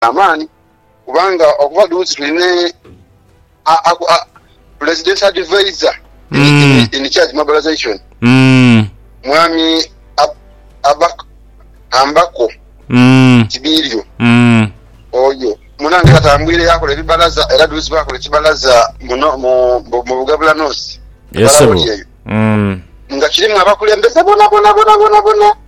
amaani kubanga okuba dhuuzi tulina a- a- a- presidential advisor in, Mm. in, in charge mobilization Mm. mwami Ab- Abak- ambako Mm. kibirio Mm. oyo munange atambwire yakola ebibalaza era duuzi bakola ekibalaza muno- mu- mu mu bugabula noosi Yes, Balawo sebo. lyeyo. Mm. nga kirimu abakulembeze bona bona bona bona bona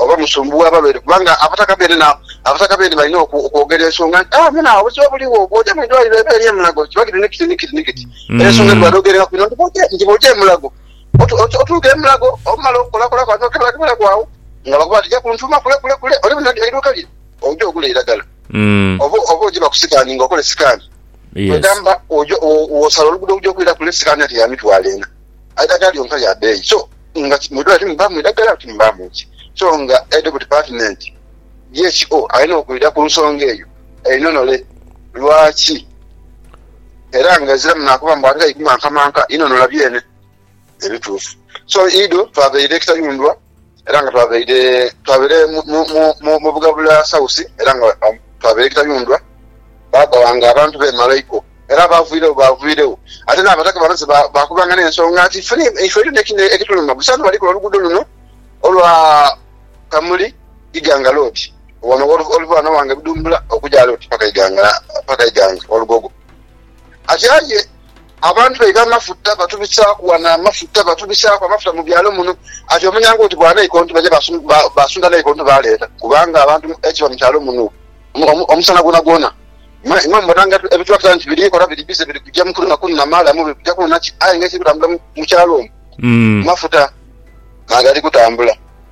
Oba musumbuwa ababeere, kubanga abataka beene na abataka beene balina okwogera ensonga nti, Ah, muna, obuziba buligho. Bw'oja mu idwaliro eba eri e Mulago, kiba kiti ni kiti ni kiti ni kiti. Era ensonga edhi badhoogerengaku inho nti bw'oja, nti bw'oja e Mulago, otuuka e Mulago, omala okukolakola kwagho n'okeberakeberagho agho, nga bakoba bati ja kuntuuma kule kule kule ole buna eiduuka lye, oje ogule eiragala. Oba, oba oje bakusikaaninge okole sikaani, kwegamba, oja, wosala oluguudo okuja okwira kule, sikaani ate ya mitwalo ena. Eidagala lyonka lya beeyi so nga mu idwaliro timubaamu idagala awo timubaamu ki. So nga aidha ku dipatimenti DHO alina okwidha ku nsonga eyo einhonhole lwaki era nga eziramu naakuba mbu ate aidhu mankamanka inhonhola byene ebituufu. So idho twabaire ekitayundhwa. era nga twabaire twabaire mu Bugabula South era nga twabaire Kitayundwa, baagaba nga abantu bemalaiko era abaaviiregho baaviiregho. Ate n'Abataka bamaze baakubanga n'ensonga nti ife eirina ekituluma buli saha nibalikola oluguudo luno olwa Kamuli, Iganga Road, wano oluva wano wange Budumbula okuja wale oti paka Iganga, paka Iganga Walugogo. Ati aye. Abantu baidha amafuta, batubisaaku ghano amafuta, batubisaaku amafuta mu byalo muno. Ati omanya ng'oti bwa Naiko nti baja baasunda Naiko nti baaleeta, kubanga abantu ekiba mu kyalo muno omusana gwonagwona. Imwe mubona nga ebitulakita nti biri kola, biri bize, biri kuja mu kunona kunona maalamu, biri kuja kunona ki? Aye ng'ekiri kutambula mu kyalo omwo, mafuta, n'agali kutambula.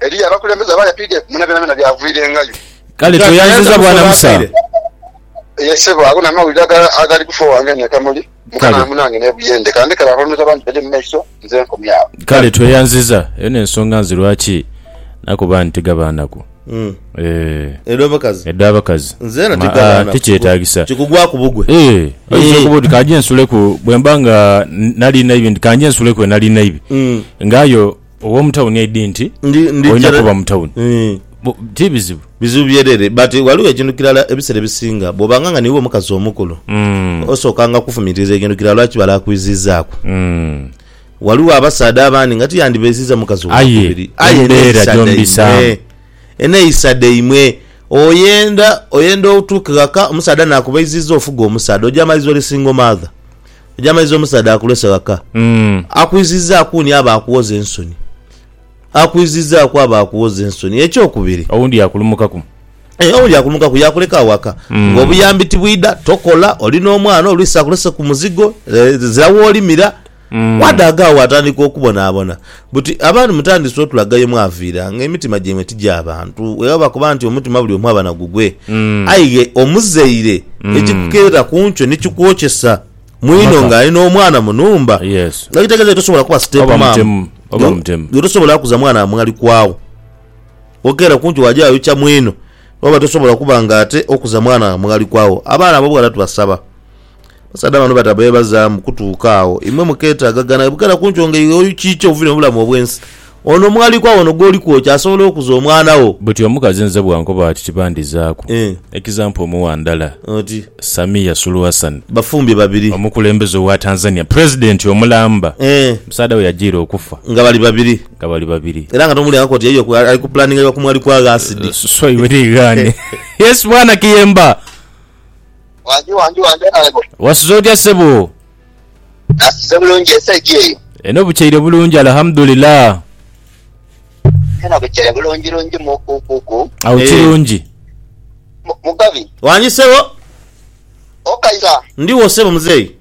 Eriyo abakulembeze abaaya pdf muna byonabyona byavwirengayo. Kale tweyanziza bwana Musa. Ye sebo ago namawulire agali kufa owange nekamuli mukama munange nebuyende kandekere aho ndoza bangi bede mumaiso nze nkomye awo. Kale tweyanziza eyo nensonga nze lwaki nakoba nti tigaba naku eeh edabakazi maa tikyetagisa oyinza okuba oti kanje nsuleku bwemba nga nali naibi nti kanje nsuleku enali naibi nga aye Ow'omu tawuni aidhi nti olina kuba mu tawuni. Eh. Ti bizibu. Bizibu byerere. But ghaligho ekintu kirala ebiseera ebisinga bw'obanga nga niiwe omukazi omukulu, hmm. osookanga kufumiitiriza ekintu kirala lwaki balaakwiziizaaku. Hmm. Ghaligho abasaadha abandi nga tiyandibeisiza mukazi owokubiri. Aye eneyisa dhaimwe oyenda oyenda otuuke ghaka omusaadha naakubeiziiza ofuge omusaadha oja amaliriza oli single mother. Egy'amaizi omusaadha akulese ghaka akwizizaaku ni aba akuwoza ensoni. Akwizizaaku aba akuwoza ensoni. Eky'okubiri. Owundi yakulumukaku. Eeh, owundi yakulumukaku, yakuleka agho ghaka nga obuyambi tibwidha, tokola, oli n'omwana, oluisi akuleseku muzigo, ezira w'olimira. Bw'adaaga agho atandika okubonabona. Buti abantu mutandise otulaga ye mwaviira, nga emitima gyaimwe ti gya bantu? Bwewaba kuba nti omutima buli omu aba na gugwe, aye ye omuzaire ekikukeera ku nkyo ni kikwokyesa, mwino nga ali n'omwana mu nhumba, nga kitegeeza ye tosobola kuba sitepumaama, ye tosobola kuza mwana wa mwalikwagho. Okeera ku nkyo waja wayokya mwino, bwewaba tosobola kuba nga ate okuza mwana wa mwalikwagho. Abaana abo bughala tubasaba. Abasaadha bano bata beebazaamu kutuuka agho. Imwe mukeetaagagana bukera ku nkyonga eyo okiikya ovire mu bulamu obw'ensi. Ono omwalikwa ono gw'oli kwokya asobola okuza omwana wo. Buti omukazi nze bw'ankoba ati tibandizaaku. Ekizampo omuwa ndala, Samia Suluhu Hassan, Bafumbye babiri. omukulembeze owa Tanzania, Pulezidenti omulamba, musaadha we yajiira okufa Nga bali babiri. nga bali babiri. Era nga tomuwulira nga k'oti yaiyo ali kupulaninga bya ku mwalikwa agho asidi. So iwe niighaane. Yes bwana Kiyemba. Wangi wangi wangi Honourable. Wasuze otya sebo? Nasuze bulungi esaidi eyo? Eno bukyeire bulungi Alhamdulillah. Eno bukyeire bulungi lungi mukukuku. Awo Eeh. kirungi. Mu- Mugabi, Wangi sebo? okaira? Ndiwo sebo muzeeyi.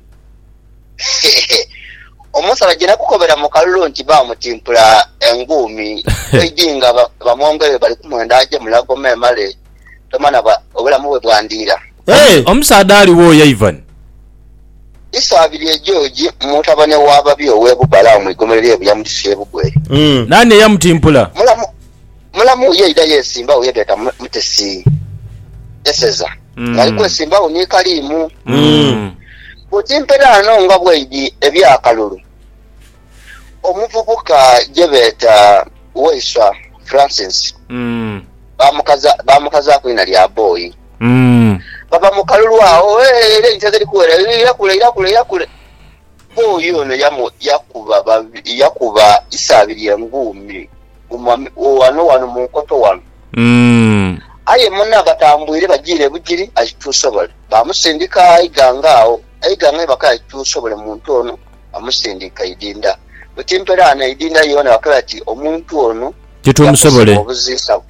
Omusaadha gye nakukobera mu kalulu nti baamutimpula enguumi, Beijing aba- abamwongere bali kumwenda aje Mulago memale tomanha bwa obulamu bwe bwandiira. Eeh! Omusaadha ali wo Yaivan? Isaabiri e George, mutabane wa babi ow'e Bubale agho mu igomero ly'e Buyamudisi e Bugweri. Naani eyamutimpula? Mulamu mulamu yaidha yeesimba wo ye beeta mu Mutesi Eseza ng'ali kwesimba wo ni Kalimu. Bw'otimpera ghano nga bweidhi eby'akalulu. Omuvubuka gye beeta Waiswa Francis baamukazaaku eina lya Boi. Bava mu kalulu agho ere enkya dhiri kuwera eira kule eira kule eira kule. Boi ono yakuba isa abiri enguumi ghano ghano mu nkoto ghano. Aye mune abatambuire bajiire bujiri aituusa obole. Baamusindika eighanga agho eighanga ni bakaaya aituusa obole muntu ono. amusindika idinda. Buti mperaano idinda yoona bakoba bati omuntu ono yakozesebwa obuziisa,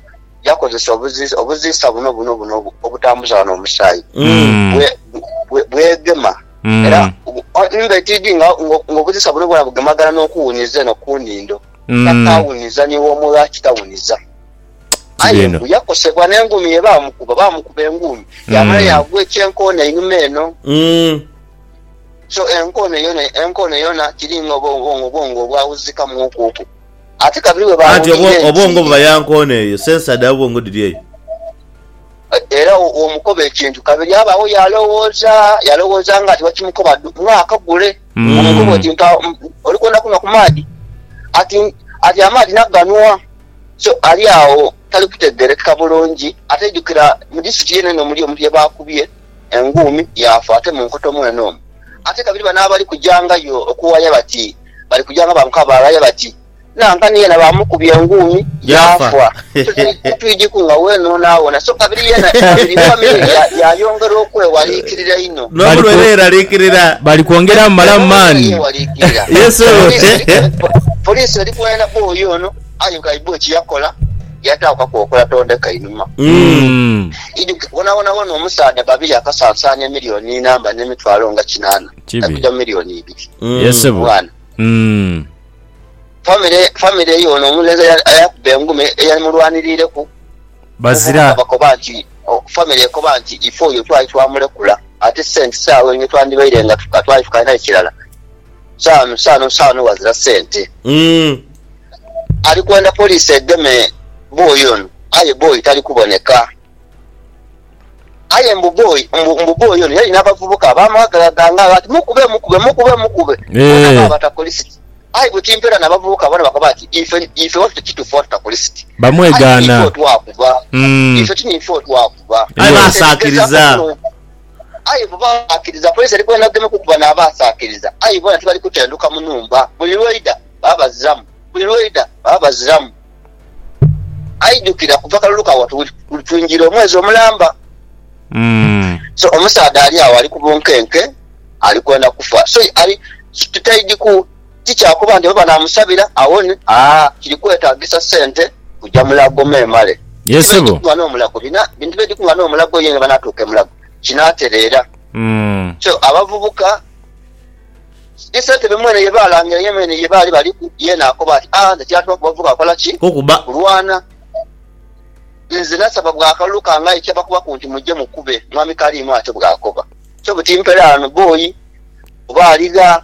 yakozesa obuziisa, obuziisa buno buno buno obutambuza wano omusaayi bwe bwegema era nga tidhi nga obuziisa buno bwona bugemagana n'okuwuniza eno ku nhindo takaawuniza ni woomo lwaki tawuniza. Aye mbu yakosebwa n'engumi ye baamukuba, baamukuba engumi yaamala yaagwa ekyenkoona einhuma eno. Kyo enkoone yona, enkoone yona kiri nga obwongo, obwongo obwawuzika mwoku oku. Ate kabiri bwe Anti obwo, baawulirira obwongo enjiri, buba ya nkoone eyo, sensa dha bwongo dhiri eyo. era wo womukoba ekintu, kabiri abaawo y'alowooza, y'alowooza nga ati wakimukoba dhu, nga akagule. Omukoba oti, Umm. Mpa, umm, oli kwenda kunhwa ku maadhi? Ati, ati amaadhi naganhwa. So, ali agho tali kutegeerekeka bulungi. Ate jukira, mu district yene eno muli omuntu ye baakubye. Enguumi yaafa ate mu nkoto mwene omwo. Ate kabiri bano abali kujangayo okuwaya bati bali kuja nga banka baghaya bati nanka ni yena bamukubye enguumi Yaafa. yaafa. Titwidhiku nga weenhonaawona. So kabiri yena kabiri famire ye ya- yaayongera okwewaliikirira inho. N'omu lwe yeeraliikirira. Bali kwongera mumalamu maani. Yesu eri kwena bwoyo ono. Aye nkaidhwa ekiyakola yataawo kakokola tondeka inhuma. Ijuke bonabona bona omusaadha Babirye akasansaana emilioni inamba ne mitwalo nga kinaana Kibi. okuja mu milioni ibiri. Yes sebo. Mwana. Mm. Famire famire eyo ono omulenzi eya- eyakuba enguma eyamulwanirireku Bazira. omuvubuka bakoba nti o- famire ekoba nti ife oyo twali twamulekula ate sente saawa eyo twandhibaire nga tu- twali tukalinayo kirala Sanu sanu sanu wazira sente. Alikwenda police egeme boy ono aye boy tali kuboneka. Aye mbu boy mbu mbu boy ono yalina abavubuka abamwagala dha nga ati mukube mukube mukube mukube bona Eeh. baba takuli siti. Aye bwe timpera na bavubuka bona bakoba ati ife ife watu tekitufu watu takuli siti. Aye tiniife Bamwegaana. otwakuba. Ife tiniife otwakuba. Aye Eeh. Kati ebigezaku basaakiriza. no Aye bbo baasaakiriza, Kaisari gwena ageme kukuba n'abaasaakiriza. Aye boona tibali kutenduka mu nhumba, buli lw'oidha baba baziramu, buli lw'oidha baba baziramu. Aidhukira kuva kalulu ka watu buli twingiire omwezi omulamba. So omusaadha ali agho ali ku bunkenke, ali kwenda kufa. So ali, tutaidhiku. Ti kya kuba nti baba naamusabira awone, aa, kiri kwetaagisa sente kuja Mulago memale. Ye Bintu biri ssebo. kung'ana omulago bina, bintu biri kung'ana omulago yenga banaatuuka e Mulago kinaatereera. Mm. So, abavubuka, ni sente be mwene ye baalangira ye mwene ye baali baliku, ye naakoba ati, Aa, nze kyantumaku bavubuka kukola ki? Kukuba. Kulwana. Nze nasaba bwa akalulu kange aye tiyabakubaku nti muje mukube, Mwami Kaliimo atyo bw'akoba. So, buti mperaano bboyi, oba ali gha.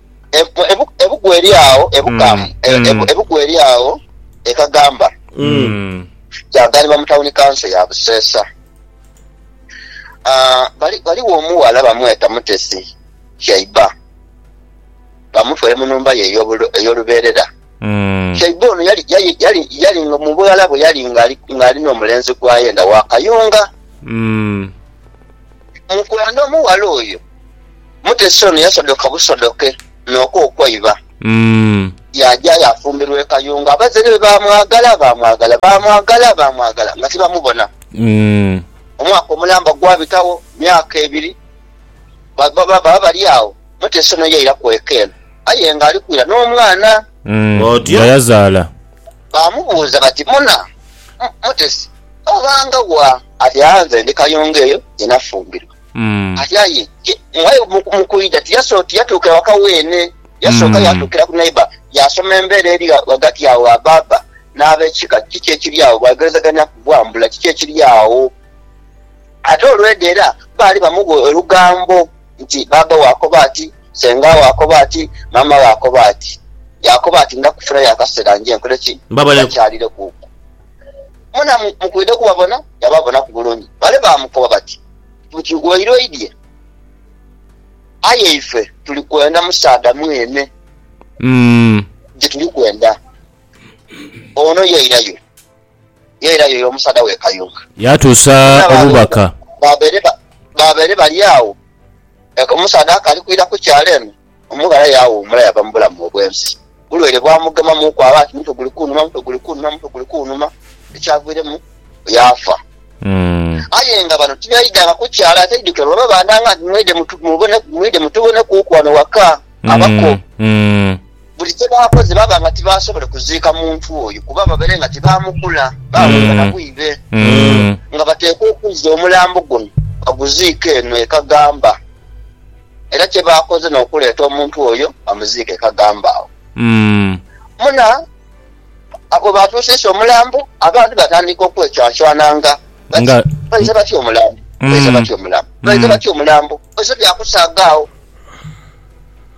Ebugu eri agho ebukamu mm, mm. ebugu eri agho ekagamba mm. kyaganibwa mu tawuni kanso ya Buseesa. Ah, Ghaligho omuwala bamweta Mutesi Shaiba, bamutwere mu numba ye ey'olubeerera. Shaiba ono yali nga mu bughala bwe yali ng'ali n'omulenzi gwa yenda wa kayunga. Mukwano, omughala oyo mutesi ono yasodoka busodoke n'oku okwaiba, yaaja yaafumbirwa e Kayunga. Abazaire be baamwagala, baamwagala, baamwagala, baamwagala nga tibamubona. Omwaka omulamba gwabitagho, myaka ebiri, baba bali agho, mutesi ono yairaku eka eno aye ng'ali kwira n'omwana. Otyo? Nga yazaala? baamubuuza bati, Muna, mutesi, obanga wa ati agha nze ndi kayunga eyo ye nafumbirwa. Ati aye ye mughayo mu kwidha tiyatuuka ewaka weene. Yasooka yaatuukira ku neiba yaasoma embeera eri ghagati agho gha baaba n'ab'ekika, kiki ekiri agho. Baaigherizagania ku bwambula kiki ekiri agho. Ate olwedha era baali bamugha olugambo nti, Bbaabba wo akoba ati, Senga wo akoba ati, Maama wo akoba ati. Yaakoba ati, Ndakufirayo akaseera nje nkole ki? Mbakyalire kuku. Mwena mukwidha okubabona? Yababonaku bulungi. Bale baamukoba bati, Buti waire oidhie? Aye ife tuli kwenda musaadha mwene gye tuli kwenda. Ono yairayo. Ye era yoyo omusaadha w'e Kayunga. Yaatuusa obubaka. Baabaire bali agho, omusaadha akaali kwidha ku kyalo eno, omughala yaawuumula yaava mu bulamu obw'ensi. Bulwaire bwamugema mu kwaba ati mutwe guli kunhuma, mutwe guli kunhuma, mutwe guli kunhuma, ekyaviiremu yaafa. Aye nga bano tibaidhanga ku kyalo aye taidhukira lwa babandhanga nti, Mwidhe mutubonekuuku ghano ghaka, abako. Buli kye baakoze baaba nga tibaasobole kuziika muntu oyo kuba babaire nga tibaamukula. Baawumba na bwire nga bateekwa okuzza omulambo guno baguziike eno e Kagamba. Era kye baakoze n'okuleeta omuntu oyo bamuziike e Kagamba agho. Muna bwe baatuusiisa omulambo, abantu baatandika okwecwanshwana nga bati, Baise batya omulambo? Baise batya omulambo? Baise batya omulambo? Baise bya kusaaga agho.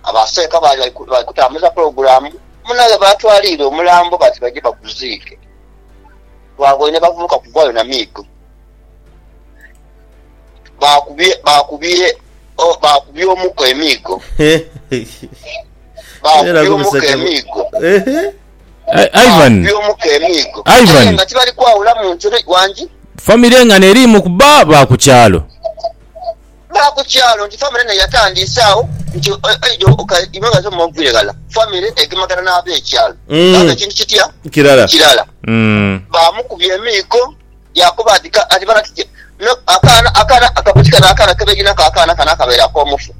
Abaseeka baali bali kutambuza pulogulaamu muno ye baatwaliire omulambo bati baije baguziike. Twaboine bavubuka kugwayo na miigo. Baakubye, baakubye, baakubye omuko emiigo. Baakubye omuko emiigo. Ivan, Baakubye omuko emiigo. Ivan. Aye nga tibali kwawulamu nti, Wangi? Famire nga n'eriimu kuba ba ku kyalo. Ba ku kyalo nti famire eno yatandiise agho nti oidha okaidhibwa nga zoma oviire ghala. Famire egemagana n'ab'ekyalo baaba ekintu kitya kirala. Baamukubya emiiko yaakoba ati, Kati bano kiki? Akaana akabuuti kano akaana ke baidhi nako akaana kano akabaire ak'omufu,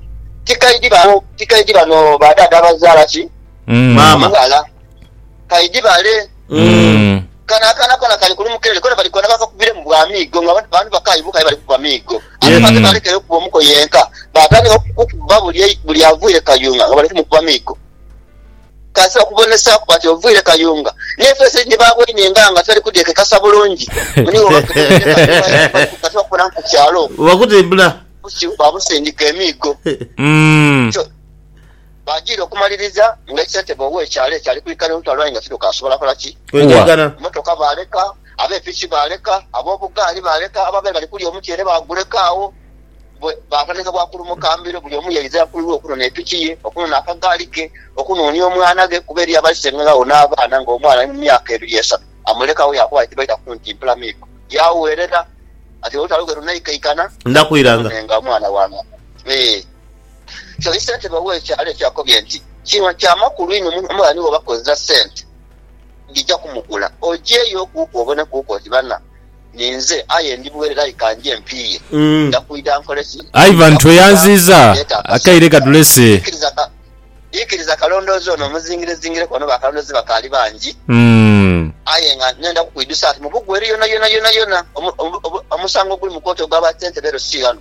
tikaidhi bano ba dhaadha abazaala ki maama ghala? Kaidhi bale. Kano akaana kona kali kulumuka ere kona bali kwenda bakakubiremu bwa miigo nga abantu bakaayi buuka aye bali kukuba miigo. Ate bano tebalekera kukuba omuko yenka, baatandika kukuba buli avwire Kayunga nga bali kumukuba miigo. Kaisi bakubonesaaku bati ovwire Kayunga n'efeesi eri nibaaboine nga teri kudhekekasa bulungi mbu niiwe obakutemeire Kayunga aye nga bali ku kati bakubonaku ku kyalo okwo baabusindika emiigo. Baajiire okumaliriza nga ssentebe ow'ekyalo ekyo ali kwikala eutalo aye nga tidhokaasobola kola ki. Kuwa. Mmotoka baaleka, abe piki baaleka, ab'obugaali baaleka, abaabaire bali kulya omutyeere baaguleka agho. Bwe baatandika bwa kulumuka mbiro, buli omu yaidha ku lulwe okunona epiki ye, okunona akagaali ke, okunoonia omwana ghe kuba eriyo abalisengeragho n'abaana ng'omwana ali mu myaka ebiri esatu amulekagho yaakoba kye baita ku nti mpulamiiko. Yaagherera ati, Olutalo lwe lunaikaikana, ndidha kwiranga omwana wange. Kyoka ssentebe ow'ekyalo ekyo akobye nti, Kino kya makulu inho, omughala ni bw'oba kozesa ssente, ndija kumugula. Ojeeyo kuku obone kuku oti bana, ninze aye ndi bwereere aye ka nje mpiiye. Nja kwidha nkole ki? Ivan tweyanziiza akaire kadhulese. Ikiriza kalondoozi ono omuzingirezingireku ono bakalondoozi bakaali bangi. Aye nga nenda kukwidhusa nti mu Bugu eri yonayona yonayona omusango oguli mu kooti ogwa ba ssentebe ero si ghano.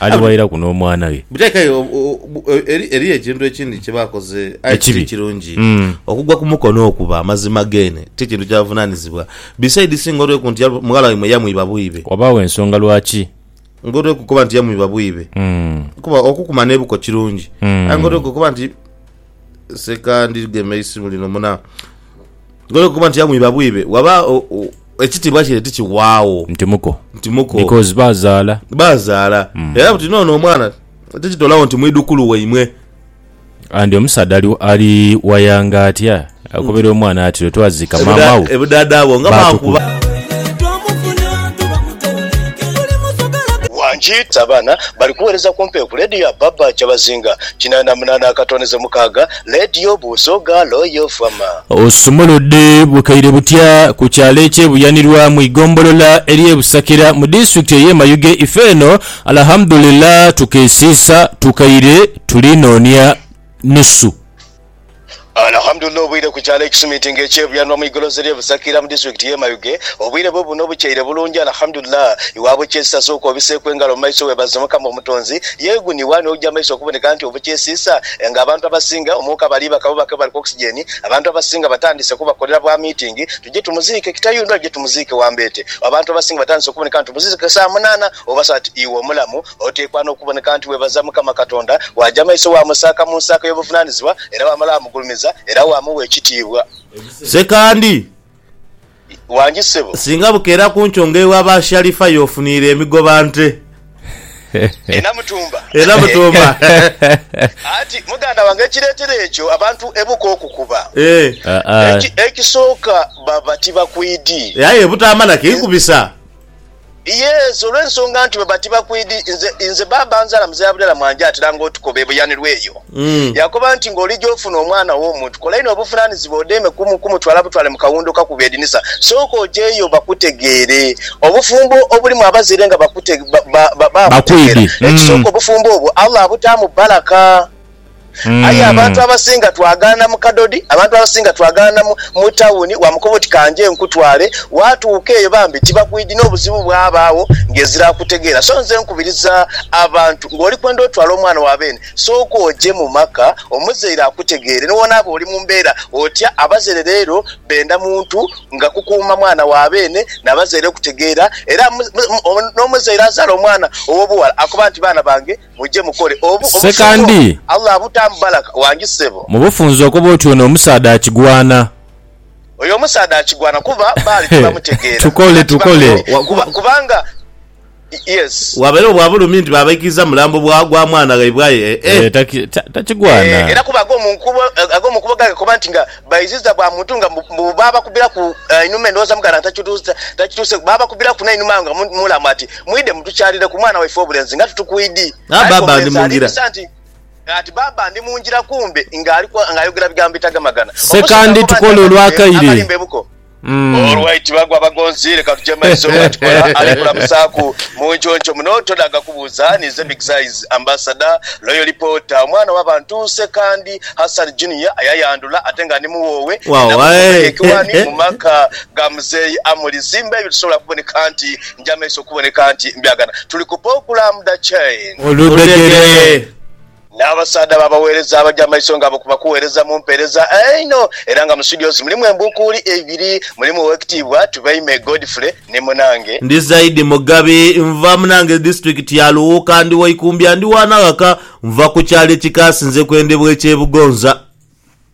Aliwairaku n'omwana ghe. Buteeka aye o- o- bu- e- eri- eriyo ekintu ekindi kye bakoze aye Ekibi. kiri kirungi Mm. okugwa ku mukono okuba amazima geene ti kintu kya buvunaanyizibwa bisaidi si ng'olweku nti ya- mughala waimwe yamwiba bwibe Wabaagho ensonga lwaki. ng'olweku kuba nti yamwiba bwibe Mm. kuba okukuma n'ebuko kirungi Mm. aye ng'olweku kuba nti Sekandi gema eisimu lino muna gole okuba nti yamwiba bwibe waba ekitibwa kye tikiwawo nti muko nti muko because bazala bazala mm. era buti nono omwana tekitolawo nti mwidukulu waimwe and omusaadha ali wayanga atya Akobera omwana ati lwetwaziika maama wo baatukuba. Wanjiita abaana bali kuweereza kumpi ku leediyo ya Baba Kyabazinga kinaana munaana akatondeze mukaaga, leediyo Busoga Royal FM. Osumuludde bukaire butya ku kyalo ekye Buyanirwa mu igombolola erye Busakira mu disitulikiti eye Mayuge ife eno Alhamdulillah tukeesiisa tukaire tuli noonia nusu. Alhamdulillah obwire ku kyalo ekisumitinga ekye Buyanwa mu igoloza erye Busakira mu disitulikiti ye Mayuge obwire bwe buno bukyeire bulungi Alhamdulillah iwabwo kyesisasa okwo biseeku engalo mu maiso webaze Mukama Omutonzi yee guno iwani ogya amaiso okuboneka nti obukyesiisa nga abantu abasinga omwoka bali baka bo bake bali ku oxygen abantu abasinga batandise kubakolera bwa mitingi tuje tumuziike Kitayundo aje tumuziike Wambeete abantu abasinga batandise okuboneka nti tumuziike saa munana oba saa iwe omulamu Oteekwa n'okuboneka nti weebaza Mukama Katonda, waaja maiso waamusaaka mu nsaako y'obuvunaanizibwa, era waamala waamugulumiza, era waamugha ekitiibwa. Sekandi, Wangi ssebo. singa bukeera ku nkyo nga ewa ba Sharifa y'ofuniire emigoba nte. E Namutumba. E Namutumba. Anti muganda wange ekireetera ekyo abantu ebuka okukuba, Ee. Aa. eki, ekisooka baba tibakwidi. Ee, aye butaama na kikubisa. Yes, olw'ensonga nti baba tibakwidhi. Nze, nze baaba anzaala Muzei Abdallah Mwanje atera nga otukoba ebuyanirwa eyo. Yakoba nti nga olija ofuna omwana w'omuntu, kola inho obuvunaanizibwa odeeme ku, ku mutwala butwale mu kawundo ka kuba edinisa. Sooka ojeeyo bakutegeere. Obufumbo obulimu abazaire nga bakute, ba, ba, ba, baabutegeera. Bakwidhi. Ekisooka obufumbo obwo Allah abutaamu baraka. Aye abantu abasinga twagaana mu kadodi, abantu abasinga twagaana mu tawuni, wamukoba oti ka nje nkutwale. Waatuuka eyo bambi tibakwidhi n'obuzibu bwabaagho ng'ezira akutegeera. So nze nkubiriza abantu ng'oli kwenda otwala omwana wa beene, sooka oje mu maka omuzaire akutegeere. Ni woonaaba oli mu mbeera otya, abazaire leero benda muntu nga kukuuma mwana wa beene na bazaire okutegeera. Era n'omuzaire azaala omwana ow'obughala akoba nti baana bange. Sekandi, mu bufunze okoba oti ono omusaadha akigwana. Hee, tukole, tukole. Waabairegho bwa bulumi nti baabaikiriza mulambo gwa mwana ghaibwe aye, ee. Takigwana. baiziza bwa muntu nga mbu baabakubiraku einhuma endhowooza muganda nga takituuseku. Baabakubiraku n'einhuma awo nga mulamu ati, Mwidhe mutukyalireku mwana waife ow'obulenzi nga tutukwidhi. Aye nga omulenzi aliibisa nti, Ati bbaabba ndi mu ngira kumbe ng'ayogera bigambo bitagamagana. Omusaadha akoba nti, Akanidhe akalimba ebuko. Olwo aitibwa gwa bagonzi leka tujemalise olwa tukola ali kulamusaaku mu nkyoncho muno todaaga kubuuza ninze big size ambassador loyal reporter omwana wa bantu Ssekandi Hassan Junior ayayandula ate nga ndi muwoowe nina bugumba ye kiwaani mu maka ga muzeeyi Amuli Zimba ebyo tusobola kuboneka nti njamaiso kuboneka nti mbyagana tuli ku Pokula Mda Chain. Oludhegere. N'abasaadha b'abagheereza abaja amaiso nga abo ku bakuweereza mu mpeereza einho era nga mu situdios mulimu embuukuuli eibiri, mulimu Owekitiibwa Tubeime Godfrey ni munange. Ndi Zaidi Mugabi, nva munange disitulikiti ya Luwuuka, ndi wa Ikumbya, ndi wa Naghaka, nva ku kyalo ekikaasinze kwendhebwa eky'e Bugonza.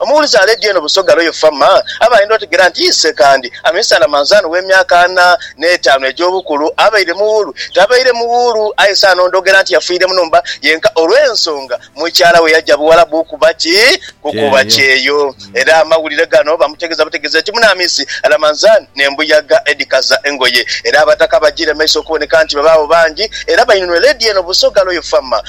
Omuwulize aleedya eno Busoga Royal Farm aba ayenda otegera nti ise kandi amisaala manzaani w'emyaka ana n'etaanu egy'obukulu abaire muwuulu. Tabaire muwuulu aye saano ndhogera nti yafiire mu nhumba yenka olw'ensonga mukyala we yaja Buwalabu okuba ki? Kukuba kyeyo. Era amawulire gano bamutegeza butegezi eti Munaamisi Ramanzani n'embuyaga edhikaza engoye. Era Abataka bajiire maiso okuboneka nti babaagho bangi era bainunue leedya eno Busoga Royal Farm